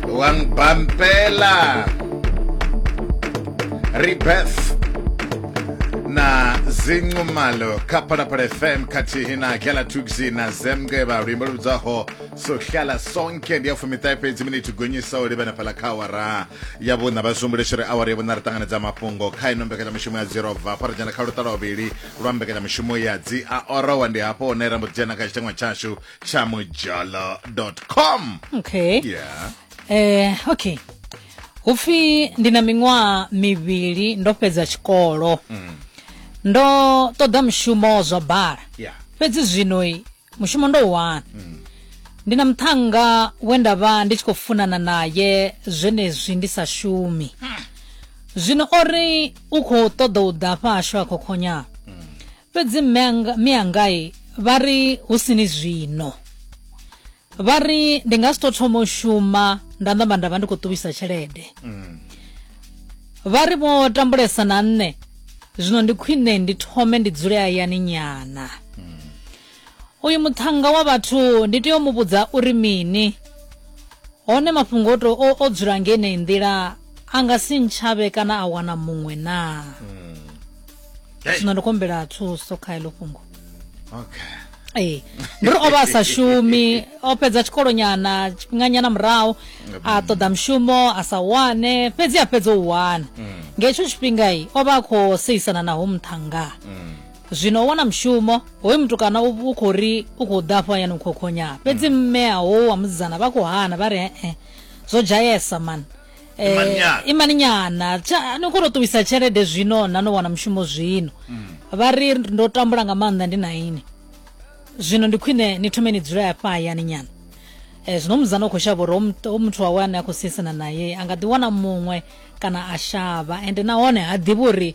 Wang Bampela Rebirth na zinqumalo kha phalaphala fm khathihi na kela tuxi na zemke vha luimbo lu vhidzaho sohlala sonke ndi ya fumiṱahe fhedzi miniti gonyisa u livhana fhala kha awara ya vhuṋa vha sumbuleshere awara ya vhuṋa ri ṱanganedza mafhungo kha ino mbekanyamushumo ya dzirobva fha ri dzhena kha luṱala vhuvhili lwa mbekanyamushumo ya dzi a orowa ndi hafho hune ra mbo ḓi dzhena kha tshiteṅwa tshashu chamojalo.com okay yeah eh okay upfi ndi na miṅwaha mivhili ndo fhedza tshikolo ndo ṱoḓa mushumo zwa bala yeah fhedzi zwino i, mushumo ndo u wana ndi na muṱhannga we nda vha ndi tshi khou funana naye zwenezwi ndi sa shumi zwino o ri u khou ṱoḓa u ḓa fhashu a khokhonya fhedzi mme anga- mme angai vha ri hu sini zwino vha ri ndi nga si to thoma u shuma nda namba nda vha ndi khou ṱuwisa tshelede vha ri vho tambulesa na nṋe zwino ndi khwine ndi thome ndi dzule hayani nyana Uyu muthannga wa vhathu ndi tea u mu vhudza uri mini? Hone mafhungo o to o dzula nga yeneyi nḓila a nga si ntshavhe kana a wana muṅwe naa? Hmm. Zwino ndi khou humbela thuso kha heḽo fhungo. Okay. ee ndi ri o vha a sa shumi o fhedza tshikolonyana tshifhinganyana murahu a ṱoḓa mushumo a sa wane fhedzi a fhedza u wana mm. nga hetsho tshifhingai o vha a khou seisana naho muṱhanga mm. Zwino u wana mushumo, hoyu mutukana u, u khou ri u khou ḓa afho hayani u khou khonya. Fhedzi mm. mme a howu wa musidzana vha khou hana vha ri he-e, zwo dzhayesa mani. Eh, imani nyana ni khou tou ṱuwisa tshelede zwino na no wana mushumo zwino mm. vha ri ndo tambula nga maanḓa ndi na ini zwino ndi khwine ni thome ni dzule afha hayani nyana um zwino muzana u khou shavha uri o muthu wawe ane a khou siisana naye a nga ḓiwana muṅwe kana a shavha ende nahone ha ḓivhi uri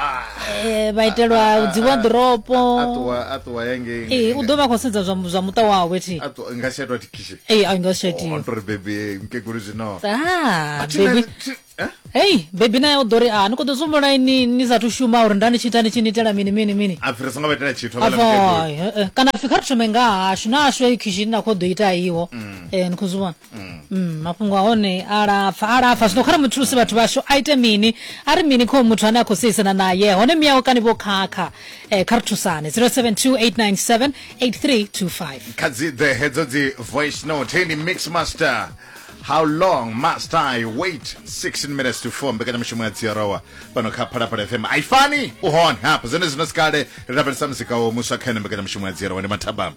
Ah. Eh, vha itelwa ah, ah, dzi wadropo ee u ḓo vha khou sedza zwa muṱa wawe ti nga si atwa tikishe ee a nga si atore bebi mkegulu zwino bebi hei bebi naye u ḓo ri a ni khou ḓo sumbula ni ni sathu shuma uri nda ni tshi ita ni tshi ni itela mini mini mini kana pfi kha ri thome nga hashu na hashu eyi khishini na khou ḓo ita iwo mm. eh, ni khou zwi vhona mm. Mm, mafhungo a hone a lapfa a lapfa zwino kha ri muthulusi vhathu vhashu a ite mini a ri mini kho muthu ane a khou seisana naye hone miyawe kani vho khakha eh, kha ri thusane 0728978325 kha dzi ḓe hedzo dzi voice note hei ndi mix master how long must i wait 16 minutes to 4 mbekanyamushumo ya dziorowa pano kha phalaphala fm aifani u hone hapa zwene zwino sikale ri lavhelesa muzika wo muswa kha ene mbekanyamushumo ya dziorowa ndi mathabama